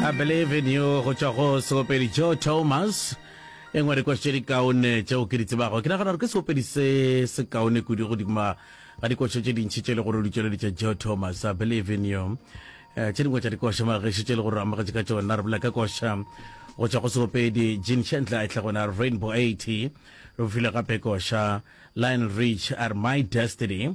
I believe in you go tšwa go seopedi joe thomas e ngwe dikoši tše dikaone tšeo ke di tsebago ke nagana gore ke seopedi se se kaone kudu godima ga dikoši tše dintšhi tše le gore o di tšweleditše joe thomas i believe in you Eh, tše dingwe tša dikoša mageši tše le gore amogetše ka tšona re bolela ka koša go tšwa go seopedi jean shandler e tlhagona rainbow 80 re bofile gape koša lion rich are my destiny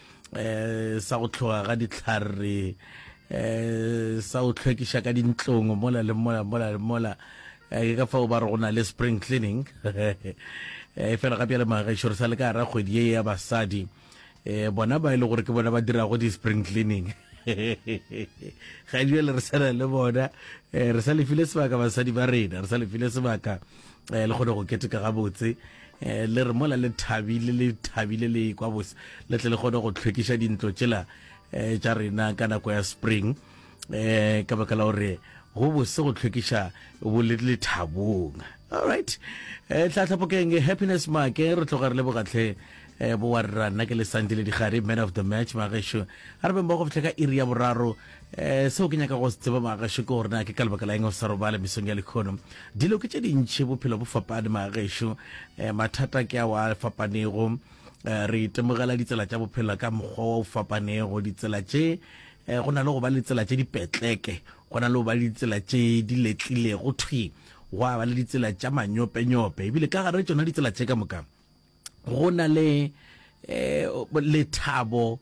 eh sa go tlhoga ga ditlhare eh sa go tlhwekiša ka dintlong mola le mola mola le mola eh, ke ka fao ba re go na le spring cleaning e fela ga bjale magaešoro sa le ka gara kgwedi ye ya basadi eh bona ba e le gore ke bona ba dirago di-spring cleaning ga jale re sana le bona eh, re sa lefile sebaka basadi ba rena re sa lefile sebaka eh, le kgone go keteka gabotse eh, le re mola le thabile le thabile le kwa bose le tle le kgone go tlhwekiša dintlo tšela eh, tša rena ka nako ya spring eh ka baka la gore go bose go tlhwekiša bo le lethabong alright eh tla tlhapokeng happiness make re tloga re le bogatlhe E bowa rra nna ke le sandile digare man of the match magaxo a re beng ba go fitlha ka iri ya boraro um seo ke nyaka go se tseba magaxo ke gore na ke ka lebaka la eng o sa robale mesong ya lekgono dilo ke tše dintšhi bophelo bo fapane magaxo um eh, mathata ke a wa fapanego um eh, re itemogela ditsela tša bophelo ka mokgwa wa o fapanego ditsela tše um eh, go na le go ba le ditsela tše dipetleke go na le go ba le ditsela tše di letlilego thwi gwa ba le ditsela tša manyopenyope ebile ka gare tsona ditsela tše ka mokang go na le eh, lethabo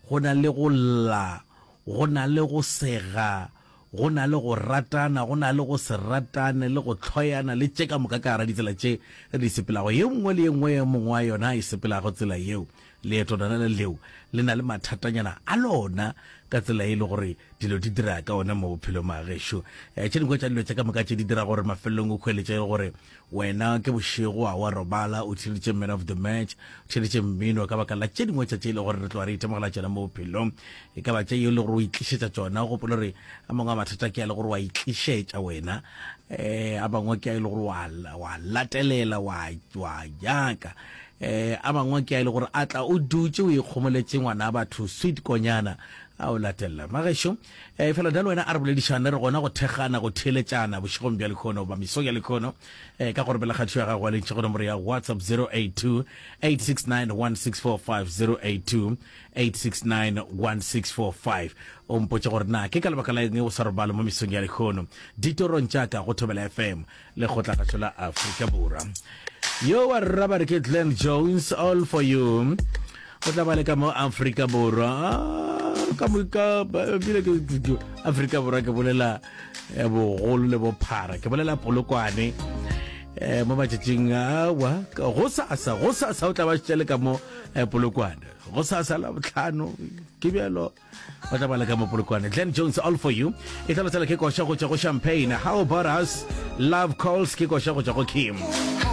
go na le go lla go na le go sega go na le go ratana go na le go se ratane le go tlhoyana le tše ka moka ka gara ditsela tše re di sepelago ye nngwe le ye nngwe ye mongwe wa yona a e sepelago tsela yeo leeto lona le leo le na le mathatanyana a lona ka tsela e le gore dilo di dira ka one mo bophelong a gešo um tše dingwe tša dilo tše ka moka tše di dira gore mafelelong o kgweletše e le gore Wena ke bošego a wa robala, o theeditše man of the match, o theeditše mmino ka baka la tše dingwe tša tše e le gore re tloga re itemogela tšona mo bophelong. E ka ba tša yeo le gore o itlišetša tšona. O gopole gore a mangwe a mathata ke a le gore wa itlišetša wena, um a mangwe ke a e le gore wa wa latelela wa wa nyaka, um a mangwe ke a e le gore a tla o dutše o ikgomoletše ngwana batho sweet konyana a o latelela. Magešo, Efela bjalo wena a re boledišane, re gona go thekgana, go theeletšana bošegong bja lekhono goba mesong ya lekhono ka go ropela kgathišo ya gago wa lentšha go nomoro ya WhatsApp 0828691645 o mpotše gore na ke ka lebaka la eng o sa robale mo mesong ya lekhono ditorong tša ka go Thobela FM. lekgotlakgašo la afrika borwa yo wa rra ba re ke glen jones all for you o tla ba le ka mo afrika borwa ka moka bile ke afrika borwa ke bolela eh, bogolo le bophara ke bolela polokwane eh, mo matšatšing awa go sasa go sasa o tla ba šitše le ka mo eh, polokwane go sasa la botlhano ke bjalo ba tla bala ka mopolokwane glen jones all for you e tla lotsela ke koša go tšwa go champagne how about us love calls ke koša go tšwa go kim